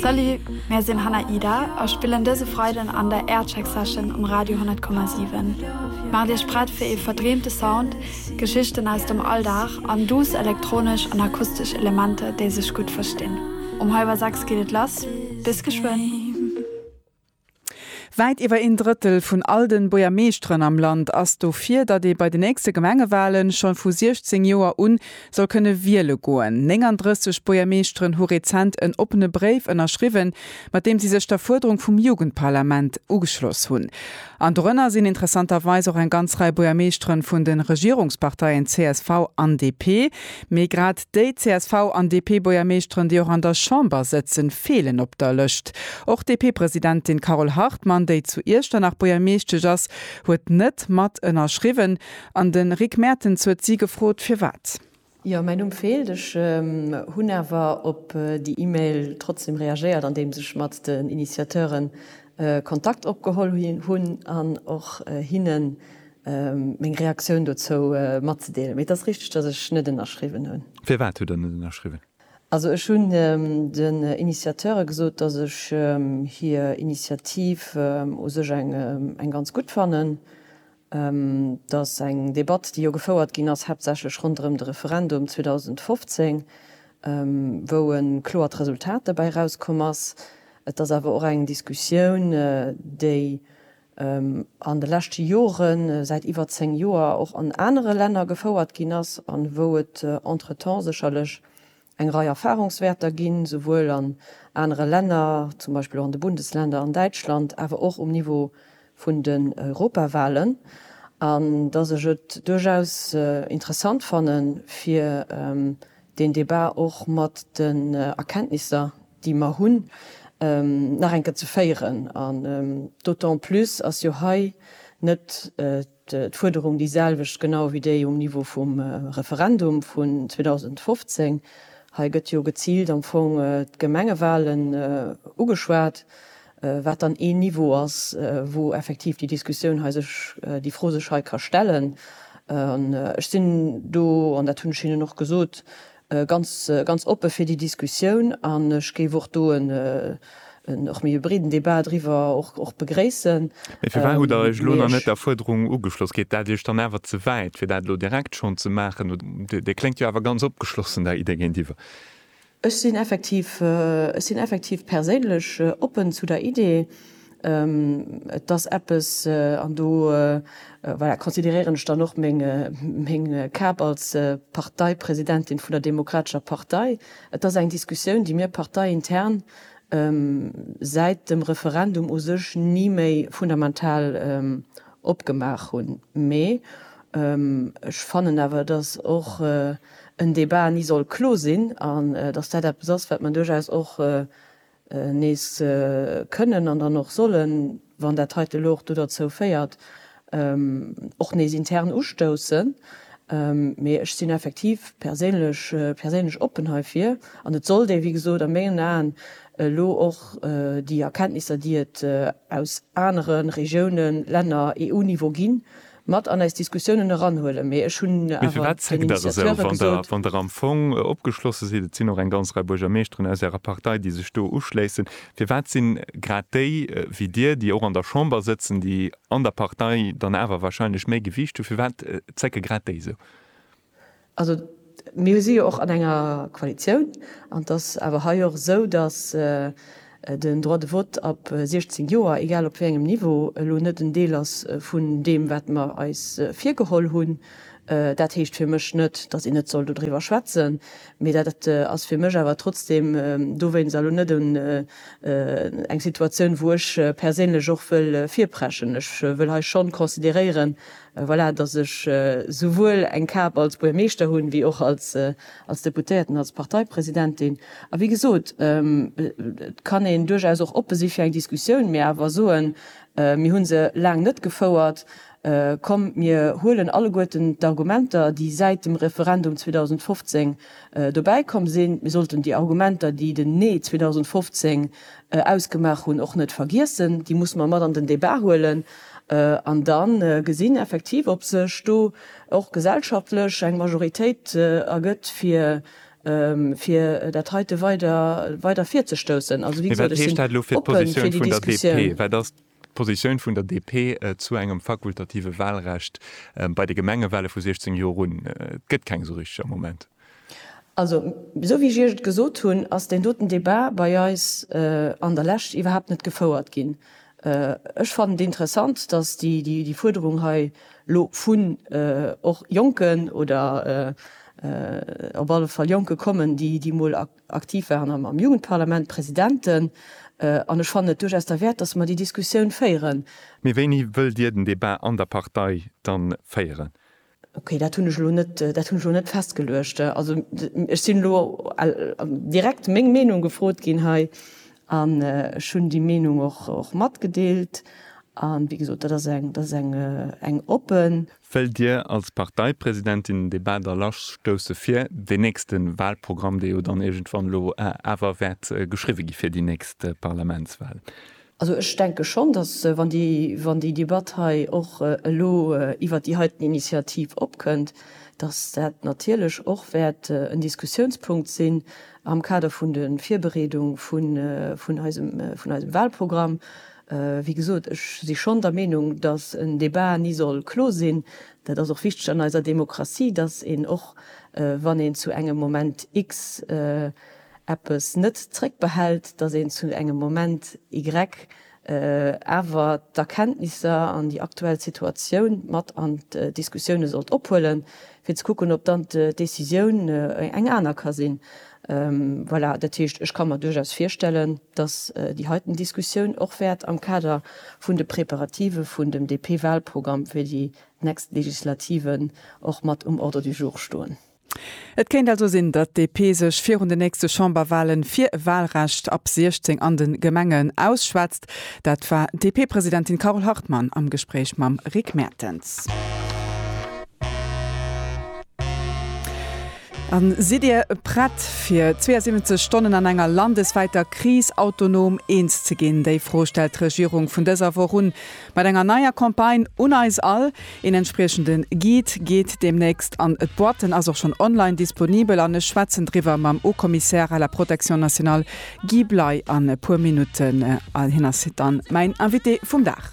Salut, mär sinn Hannah Ida a spillen dëse Freiden an der Aircheck Session um Radio 10,7. Maacht Iech prett fir ee verdreemte Sound, Geschichten aus dem Alldag an duuss elektronesch an akustesch Elementer, déi sech gutt verstinn. Um hallwer 6 geet et lass, bis geschwënn! Wäit iwwer een Drëttel vun all den Buergermeeschteren am Land ass dofir, datt ee bei den nächste Gemengewalen scho vu 16 Joer un soll kënne wiele goen. 39 Buergermeeschteren hu rezent en oppene Bréif ënnerschriwwen, mat deem si sech der Fuerderung vum Jugendparlament ugeschloss hunn. An dorënner sinn interessanterweis och eng ganz Rei Buergermeeschteren vun de Regierungsparteien csv an DP. Mee grad Déi csv an DP-Buergermeeschteren, déi och an der Chamber sëtzen, feelen op der Lëscht. Och d'DP-Presidentin Carole Hartmann, déi zu Iechternach Buergermeeschtesch ass, huet net mat ënnerschriwwen. An de Rick Mertens huet si gefrot, firwat. Jo, mäi Numm feelt. Ech hunn awer op déi E-Mail trotzdem reagéiert, andeems ech mat den Initiateuren Kontakt opgeholl hunn an och hinnen meng Reaktioun dozou matzedeelen. Mee et ass richteg, dass ech net ënnerschriwwen hunn. Firwat hutt Der net ënnerschriwwen? Also ech hunn den Initiateure gesot, dass ech hir Initiativ u sech eng ganz gutt fannen. Et ass eng Debatt, déi jo gefouert ginn ass, haaptsächlech ronderëm de Referendum 2015, wou e kloert Resultat dobäi erauskomm ass. Et ass awer och eng Diskussioun, déi an de leschte Joren, säit iwwer 10 Joer, och an anere Länner gefouert ginn ass an wou et entretemps sécherlech eng Rei Erfahrungswäerter ginn, souwuel an anere Länner, zum Beispill och an de Bundesländer, an Däitschland, awer och um Niveau vun den Europawahlen, an dass ech et duerchaus interessant fanne fir deen Debat och mat den Erkenntnisser, déi mer hunn, nach eng Kéier ze féieren. An d'autant plus ass jo hei net d'Fuerderung déi selwecht genau wéi déi um Niveau vum Referendum vun 2015. Hei gëtt jo geziilt am Fong d'Gemengewahlen ugeschwat. wat dann een Niveau ass, wou effektiv déi Diskussioun hei sech, déi Fro sech hei ka stellen. An ech sinn do, an dat hunn ech hinnen och gesot, ganz, ganz oppe fir déi Diskussioun. An ech géif och do en, och méi e breeden Débat driwwer och, och begréissen. Mee firwat hutt Der Iech elo nach net der Fuerderung ugeschloss? Geet dat Iech dann awer ze wäit, fir dat elo direkt schonn ze maachen? Dir kléngt jo awer ganz opgeschlossen der Idee géintiwwer. Ech sinn effektiv, ech sinn effektiv perséinlech oppen zu der Idee. Et ass eppes, an do, voilà, consideréieren ech dann och meng, meng Kap als Parteipresidentin vun der Demokratescher Partei, et ass eng Diskussioun, déi mir parteiintern säit dem Referendum u sech ni méi fundamental opgemaach hunn. Mee ech fannen awer, et ass och, et en Debat ni soll klo sinn an dass dat eppes ass, wat mer duerchaus och nees kënnen an dann och sollen, wann dat heite elo och do derzou féiert, och nees intern ustoussen. Mee ech sinn effektiv perséinlech, perséinlech oppen heifir an et sollt ee, wéi gesot, a mengen Aen elo och déi Erkenntnisser, déi et aus anere Regiounen, Länner, EU-Niveau ginn, mat an eis Diskussiounen eranhuelen, mee ech hunn Mee awer firwat den zéckt Der esou, Initiateure wann Der, gesot, wann Der am Fong opgeschlosse sidd, et sinn och eng ganz Rei Buergermeeschteren aus Ärer Partei, déi sech do uschléissen, firwat sinn grad déi wéi Dir, déi och an der Chamber sëtzen, déi an der Partei dann awer wahrscheinlech méi Gewiicht hunn, firwat zécke grad déi esou? Also mir si jo och an enger Koalitioun an et ass awer hei och esou, datt den Droit de vote ab 16 Joer, egal op wéi engem Niveau, elo net en Deel ass vun deem, wat mer eis virgeholl hunn. Dat heescht fir mech net, datt een net soll dodriwwer schwätzen, mee dat ass fir mech awer trotzdeem dowéinst elo net eng Situatioun, wou ech perséinlech och wëll virpreschen. Ech wëll hei schonn consideréieren, Voilà, dass ech souwuel eng Kap als Buermeeschter hunn, wéi och als Deputéierten, als Parteipresidentin. A wéi gesot, et kann een duerchaus och oppe si fir eng Diskussioun, mee awer soen, mir hu se laang net gefouert, komm mir huelen alleguerten d'Argumenter, déi säit dem Referendum 2015 dobäi komm sinn, mir sollten déi Argumenter, déi den Nee 2015 ausgemaach hunn, och net vergiessen, déi musse mer mat an den Débat huelen. An da gesinn effektiv, ob sech do och gesellschaftlech eng Majoritéit ergëtt, fir dat heite weider virzestoussen. Also, wéi gesot, ech sinn oppe fir déi Diskussioun. Mee wat ass d'Positioun vun der DP zu engem fakultative Walrecht bei de Gemengewale vu 16 Joer un? Et gëtt keng esou richteg am Moment. Also, esou wéi ech Iech et gesot hunn, ass deen doten Débat bei eis an der Lescht iwwerhaapt net gefouert ginn. Ech fannen et interessant, dass déi Fuerderung hei elo vun och Jonken oder op alle Fall Jonke kommen, déi emol aktiv waren am Jugendparlament, Presidenten, an ech fannen et duerchaus derwäert, dass mer déi Diskussioun féieren. Mee wéini wëllt Dir den Débat an der Partei dann féieren? Okay, dat hunn ech elo net, dat hunn ech elo net festgeluecht. Also ech sinn elo direkt meng Meenung gefrot ginn hei an ech hunn déi Meenung och, och matgedeelt. A wéi gesot, dat ass eng, dat ass eng, eng oppen. Wëllt Dir als Parteipresidentin den Debat da lassstousse fir deen nächste Wahlprogramm, dee jo dann iergendwann elo awer wäert geschriwwe gi fir déi nächst Parlamentswahl? Also ech denke schonn, datt, wann déi Debatt hei och elo iwwert déi heiten Initiativ opkënnt, datt dat natierlech och wäert en Diskussiounspunkt sinn am Kader vun de Virbereedung vun eisem Wahlprogramm. Wéi gesot, ech si schonn der Meenung, datt en Debat ni soll klo sinn. Dat ass och wichteg an eiser Demokratie, datt een och wann een zu engem Moment x, eppes net zréckbehält, datt een zu engem Moment Y awer d'Erkenntnisser an déi aktuell Situatioun mat an d'Diskussioune sollt ophuelen, fir ze kucken, ob dann d'Décisioun eng aner ka sinn. Voilà, dat heescht, ech ka mer duerchaus virstellen, datt déi heiten Diskussioun och wäert am Kader vun de Préparativë vun dem DP-Wahlprogramm fir déi nächst Legislativen och mat um Ordre du jour stoen. Et kéint also sinn, datt DP sech virun de nächste Chamberwahle fir e Wahlrecht ab 16 an de Gemengen ausschwätzt. Dat war d'DP-Presidentin Carole Hartmann am Gespréich mam Rick Mertens. A sidd Dir prett fir 72 Stonnen an enger landeswäiter Kris autonom eens ze ginn? Déi Fro stellt d'Regierung vun dëser Woch un. Mat enger neier Campagne un eis all. Een entspriechende Guide geet deemnächst an d'Boîte, en ass och schonn online disponibel an ech schwätzen driwwer mam Haut-Commissaire à la Protection Nationale Guy Bley an e puer Minutten. Hien ass dann mäin Invité vum Dag.